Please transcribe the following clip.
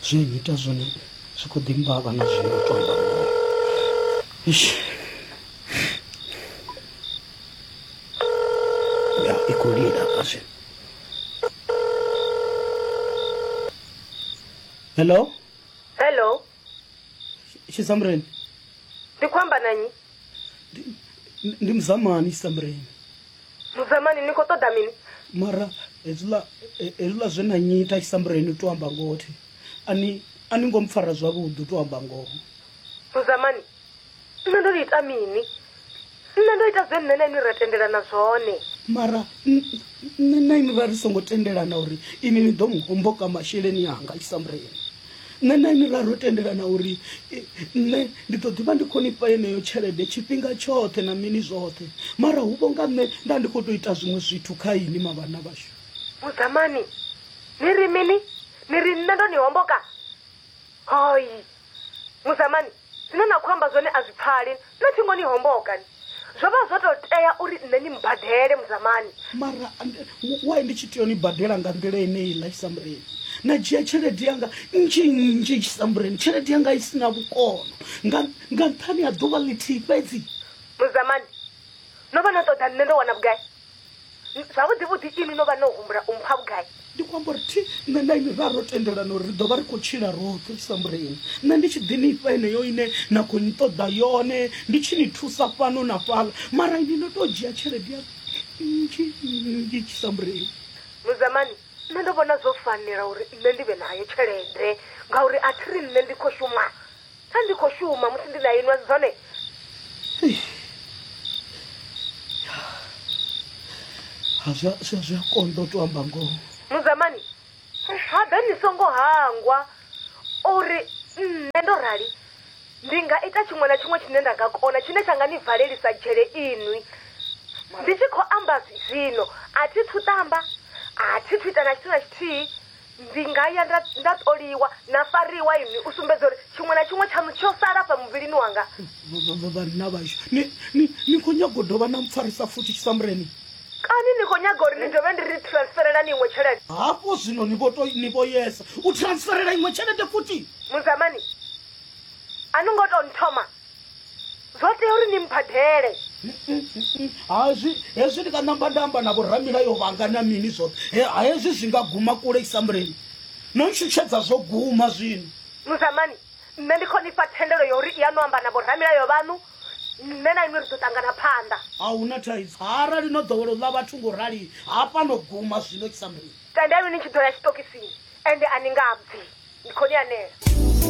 zwine nnyita zwone zwi khou ḓi mbavha na zwino tonda ya i khou lila hafha zwino hello hello tshisamureni ndi khou amba na nnyi ndi muzamani tshisamureni Mudzamani, ni khou ṱoḓa mini? Mara hezwiḽa hezwiḽa zwe na nnyita Tshisambureni, u tou amba ngoho, thi a ni a ni ngo mpfara zwavhuḓi, u tou amba ngoho. Mudzamani, Nṋe ndo ni ita mini? Nṋe ndo ita zwe nṋe na inwi ra tendelana zwone. Mara nṋe na inwi ra ri songo tendelana uri inwi ni ḓo mu homboka masheleni anga Tshisambureni. nṋe na ini ra ro tendelana uri nṋe ndi ḓo ḓivha ndi khou nifha yeneyo tshelede tshifhinga tshoṱhe na mini zwoṱhe mara hu vho nga nṋe nda ndi khou tou ita zwiṅwe zwithu kha ini mavhana vhashu vhudzamani ni ri mini ni ri nṋe ndo ni homboka hoi mudzamani Zwine na khou amba zwone a zwi pfali, na thingo ni homboka ni. Zwo vha zwo tou tea uri nṋe ni mmbadele, Mudzamani. Mara ndi, why ndi tshi tea u ni badela nga nḓila yeneiḽa, Tshisambureni? Na dzhia tshelede yanga nnzhi nnzhi, Tshisambureni, tshelede yanga i si na vhukono, nga, nga nṱhani ha ḓuvha ḽithihi fhedzi. Mudzamani, no vha no ṱoḓa nṋe ndo wana vhugai? Zwavhuḓi-vhuḓi inwi no vha no humbula u mpha vhugai? Ndi khou amba uri thi nṋe na inwi ra ro tendelana uri ri ḓo vha ri khou tshila roṱhe u sambula inwi, nṋe ndi tshi ḓi ni fha yeneyo ine na khou nṱoḓa yone, ndi tshi ni thusa fhano na fhaḽa, mara inwi no tou dzhia tshelede ya nnzhi nnzhi tshi sambula inwi. Muzamani, nṋe ndo vhona zwo fanela uri nṋe ndi vhe nayo tshelede ngauri a thi ri nṋe ndi khou shuma Pfa ndi khou shuma musi ndi na inwi, a si zwone? Ha zwi a- zwi a- zwi a konḓa u tou amba ngoho Muzamani, habe ni songo hangwa uri nṋe ndo rali ndi nga ita tshiṅwe na tshiṅwe tshine nda nga kona tshine tsha nga ni valelisa dzhele inwi. Ndi tshi khou amba zwi- zwino, a thi thu ṱamba, a thi thu ita na tshithu na tshithihi, Ndi nga ya nda, nda ṱoliwa na fariwa inwi u sumbedza uri tshiṅwe na tshiṅwe tshaṋu tsho sala fha muvhilini wanga. Vhanna vhashu, ni, ni, ni khou nyaga u dovha na mpfarisa futhi tshisambureni? Kani ni khou nyaga uri ndi dovhe ndi ri transferelani iṅwe tshelede? Hafho zwino ni vho tou, ni vho yesa u transferela iṅwe tshelede futhi? Mudzamani, a ni ngo tou nthoma. zwo tea uri ni mbadele hazwi hezwi ndi nga namba nda amba na vhoramilayo vhanga na mini zwoṱhe hezwi zwi nga guma kule isamuleni no ntshutshedza zwo guma zwino muzamani nṋe ndi khou ni fha thendelo ya uri i ya no amba na vhoramilayo vhaṋu nṋe na inwi ri ḓo ṱangana phanḓa a hu na thaidzo arali no ḓowela u ḽa vhathu ngo rali hafha no guma zwino isamuleni tendelwi ni tshi ḓo ya tshitokisini ende a ni nga bvi ndi khou ni anela